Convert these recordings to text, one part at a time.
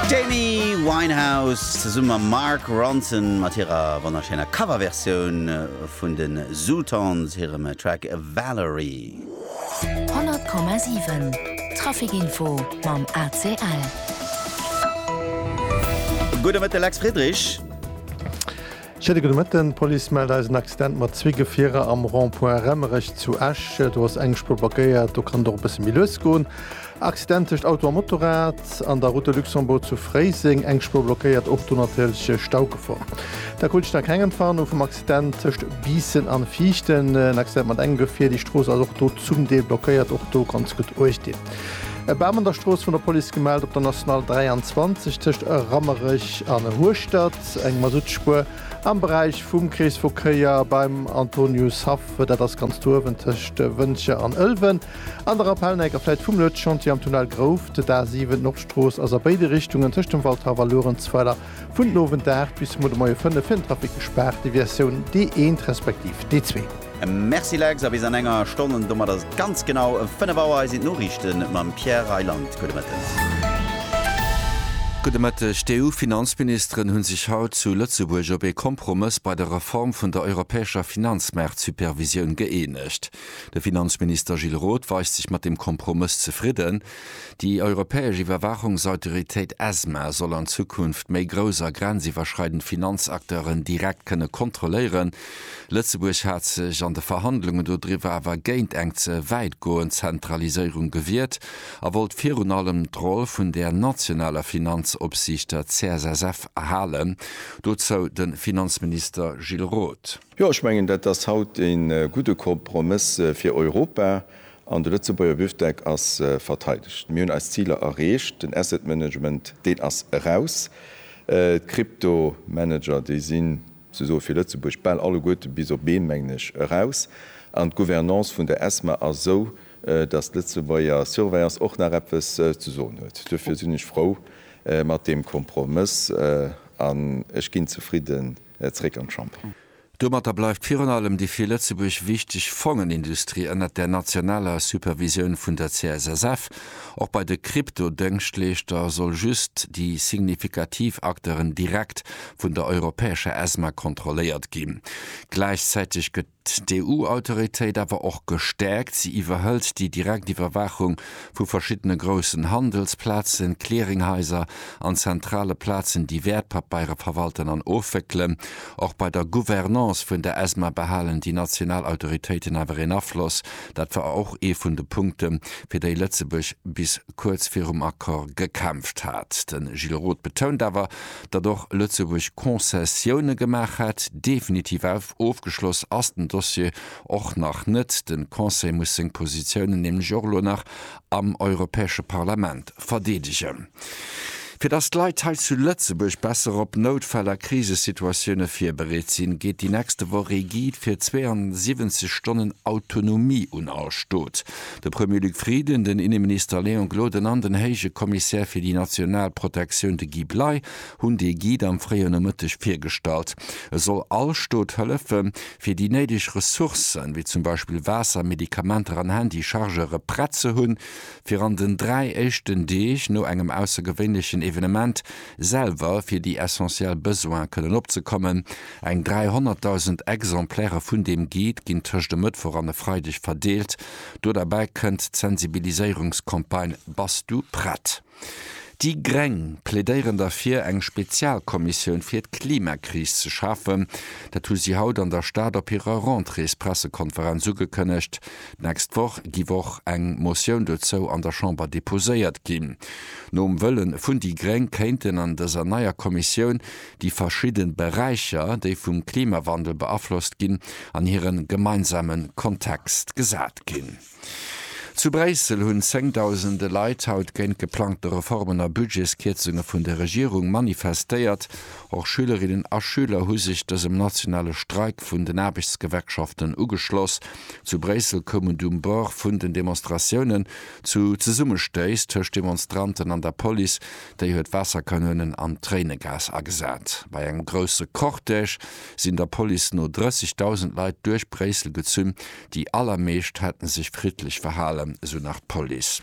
D'Amy Winehouse zesumme mam Mark Ronson mat hirer wonnerschéiner Coverversioun vun de Zutons hirem Track Valerie. 100,7 Trafic Info mam ACL. Gudde Mëtte Lex Friedrich. Schéine gudde Mëtten, D'Police mellt eis en Accident mat zwee Gefierer am Rond-point Remmerech zu Esch. Do ass eng Spuer blockéiert, do kann et och e bësse méi lues goen. Accident tëscht Auto a Motorrad an der Route de Luxembourg zu Fréiseng, eng Spuer blockéiert, och do natierlech Staugefor. Da krut ech nach keng Empfaang hu vum Accident tëscht Biissen an Viichten. En Accident mat engem Gefier, déi Strooss ass och do zum Deel blockéiert, och do ganz gutt uecht dinn. E Bam an der Strooss, vun der Police gemellt op der National 23 tëscht Rammerech an Hueschtert. Eng Masuttspuer am Beräich vum Kreesverkéier beim Antonius Haff, dat ass ganz do uewen tëscht Wëntger an Ëlwen an der Rappelneck, a vläit vum Lued Chantier am Tunnel Grouft, d'A7. D'Nordstrooss ass a béide Richtungen tëscht dem Waldhaff a Luerenzweiler vun den Owend 8 bis zumol de Moie 5 fir den Trafic gespaart, Deviatioun D1 respektiv D2. Merci Lex, a bis an enger Stonn, an domat ass et ganz genau 5 Auer. Hei sinn d'Noriichte mam Pierre Reyland. Gudde Mëtten. Gudde Mëtteg. D'EU-Finanzministeren hu sech haut zu Lëtzebuerg op ee Kompromëss bei der Reform vun der europäescher Finanzmaartsupervisioun gëeenegt. De Finanzminister Gilles Roth weist sech mat dem Kompromëss zefridden. Déi europäesch Iwwerwaachungsautoritéit ESMA soll an Zukunft méi grouss a grenziwwerschreidend Finanzakteuren direkt kënne kontrolléieren. Lëtzebuerg hat sech an de Verhandlungen dodriwwer awer géint eng ze wäitgoend Zentraliséierung gewiert a wollt virun allem d'Roll vun der nationaler Finanzopsiicht, der CSSF, erhalen. Dozou de Finanzminister Gilles Roth. Jo, ech mengen, dat ass haut ee gudde Kompromëss fir Europa an de Lëtzebuerger Bifdeck ass verteidegt. Mir hunn eis Ziler erreecht. Den Asset Management, deen ass eraus. D'Kryptomanager, déi sinn Se soe fir Lëtzebuerg bal alleguerte bis op ee, mengen ech, eraus. An d'Gouvernance vun der ESMA ass esou, datt d'Lëtzebuerger Surveillance och nach eppes ze soen huet. Duerfir sinn ech frou mat deem Kompromëss an ech ginn zefridden zréck an d'Chamber. Domatter bleift virun allem déi fir Lëtzebuerg wichteg Fongenindustrie ënnert der nationaler Supervisioun vun der CSSF. Och bei de Kryptodëngschtleeschter soll just déi signifikativ Acteuren direkt vun der europäescher ESMA kontrolléiert ginn. Gläichzäiteg gëtt d'EU-Autoritéit awer och gestäerkt, si iwwerhëlt déi direkt Iwwerwaachung vu verschiddene groussen Handelsplazen, Clearinghaiser an zentrale Plazen, déi Wäertpapeiere verwalten an ofwéckelen. Och bei der Gouvernance vun der ESMA behalen déi national Autoritéiten awer een Afloss. Dat war och ee vun de Punkte fir déi Lëtzebuerg bis kuerz virum Accord gekämpft hat. De Gilles Roth betount awer, datt och Lëtzebuerg Concessioune gemaach hätt. Definitiv ofgeschloss ass den Dossier och nach net. De Conseil muss seng Positiounen nämlech och elo nach am Europäesche Parlament verdeedegen. Fir datt d'Leit hei zu Lëtzebuerg besser op Noutfäll a Krisesituatioune virbereet sinn, geet déi nächste Woch ee Guide fir 72 Stonnen Autonomie un all Stot. De Premier Luc Frieden, den Inneminister Léon Gloden an den Héije Kommissär fir déi national Protektioun, de Guy Bley, hunn dee Guide am fréie Nomëtteg virgestallt. E soll all Stot hëllefe fir déi néideg Ressourcen, wéi zum Beispill Waasser, Medikamenter an Handy-Chargeure prett ze hunn, fir an den dräi éischten Deeg no engem aussergewéinlechen Evenement, selwer fir déi essentiell Besoine kënnen opzekommen. Eng 300.000 Exemplaire vun deem Guide ginn tëscht e Mëttwoch an e Freideg verdeelt. Do derbäi kënnt d'Sensibiliséierungscampagne Bass du prett? Déi gréng plädéieren derfir, eng Spezialkommissioun fir d'Klimakris ze schafen. Dat hu si haut an der Stad op hirer Rentréespressekonferenz ugekënnegt. D'nächst Woch giff och eng Motioun dozou an der Chamber deposéiert ginn. Nom Wëllen vun déi Gréng kéinten an dëser neier Kommissioun déi verschidden Beräicher, déi vum Klimawandel beaflosst ginn, an hiren gemeinsamen Kontext gesat ginn. Zu Bréissel hunn zéngdausende Leit haut géint geplangte Reformen a Budgetskierzunge vun der Regierung manifestéiert. Och Schülerinnen a Schüler hu sech dësem nationale Streik vun den Aarbechtsgewerkschaften ugeschloss. Zu Bréissel koum et um Bord vun den Demonstratiounen zu Zesummestéiss tëscht Demonstranten an der Police. Déi huet Waasserkanounen an Tréinegas agesat. Bei engem grousse Cortège sinn der Police no 30.000 Leit duerch Bréissel gezunn. Déi allermeescht hätte sech friddlech verhalen, esou nach d'Police.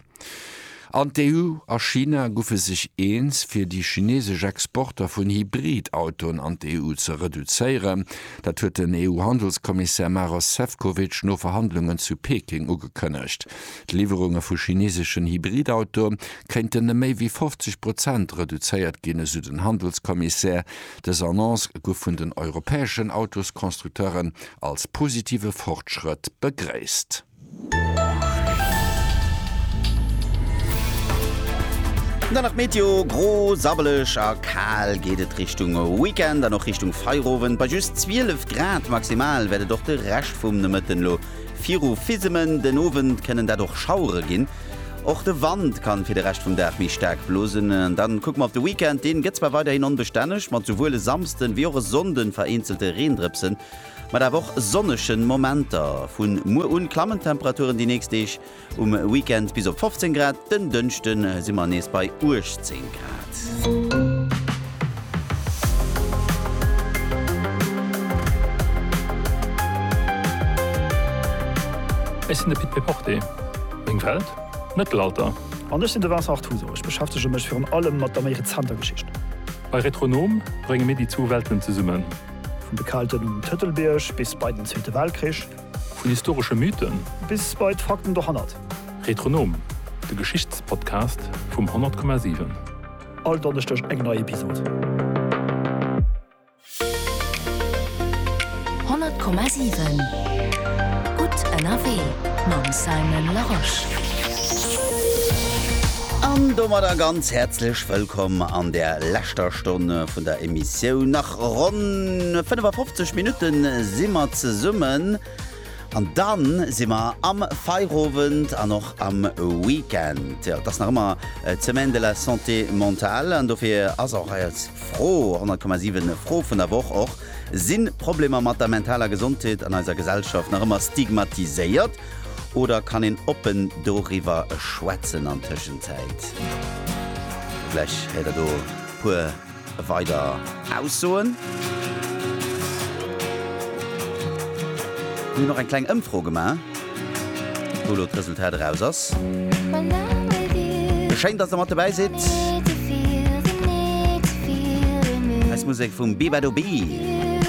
An d'EU a China guffe sech eens, fir déi chinesesch Exporter vun Hybrid-Autoen an d'EU ze reduzéieren. Dat huet den EU-Handelskommissär Maros Sefcovic no Verhandlungen zu Peking ugekënnegt. D'Liwwerunge vu chineseschen Hybrid-Autoe kéinten ëm méi wéi 50 Prozent reduzéiert ginn, esou den Handelskommissär. Dës Annonce gouf vun den europäeschen Autosconstructeuren als positive Fortschrëtt begréisst. Dann nach d'Meteo, Gro, sabbeleg a kal geet et Richtung Weekend an och Richtung Feierowend. Bei just 12 Grad maximal wäert et och de Rescht vum Nomëtten lo viru fisemen. Den Owend kënnen dat och Schauere ginn. Och de Wand kann fir de Rescht vum Dag méi staark blosen. An dann kucke mer op de Weekend, deen gëtt zwar weiderhin onbestänneg mat souwuel e Samsden wéi och e Sonnden vereenzelte Reendrëpsen. Mat awer och sonnegen Momenter. Vun muer un klammen d'Temperaturen déi nächst Deeg, um Weekend bis op 15 Grad, den Dënschden si mer nees bei 18 Grad. Ech sinn de Pit Péporté. Meng Welt, d'Mëttelalter. An ech sinn de Vincent Artuso. Ech beschäftege mech virun allem mat der méi rezenter Geschicht. Bei Retronom brénge mir déi zwou Welten zesummen. Vun de Kelten um Tëtelbierg bis bei den Zweete Weltkrich. Vun historesche Mythen. Bis bei d'Fakten dohannert. Retronom, de Geschichtspodcast vum 100,7. All Donneschdeg eng nei Episod. 100,7 Gutt ënnerwee mam Simon Larosche. An domadder ganz häerzlech wëllkomm an der leschter Stonn vun der Emissioun. Ronn 55 Minutte si mer zesummen an dann si mer am Feierowend an och am Weekend. Jo, et ass nach ëmmer d'Semaine de la Santé Mentale an dofir ass och eis Fro, 100,7 Fro vun der Woch och, Sinn Problemer mat der mentaler Gesondheet an eiser Gesellschaft nach ëmmer stigmatiséiert oder kann een oppen doriwwer schwätzen an Tëschenzäit? Vläch héiert der do e puer Weider Aussoen? Mir hunn och eng kleng Ëmfro gemaach, wou elo d'Resultat eraus ass. Schéin, dass der mat dobäi sidd. Eis Musek vum Bebado Bee.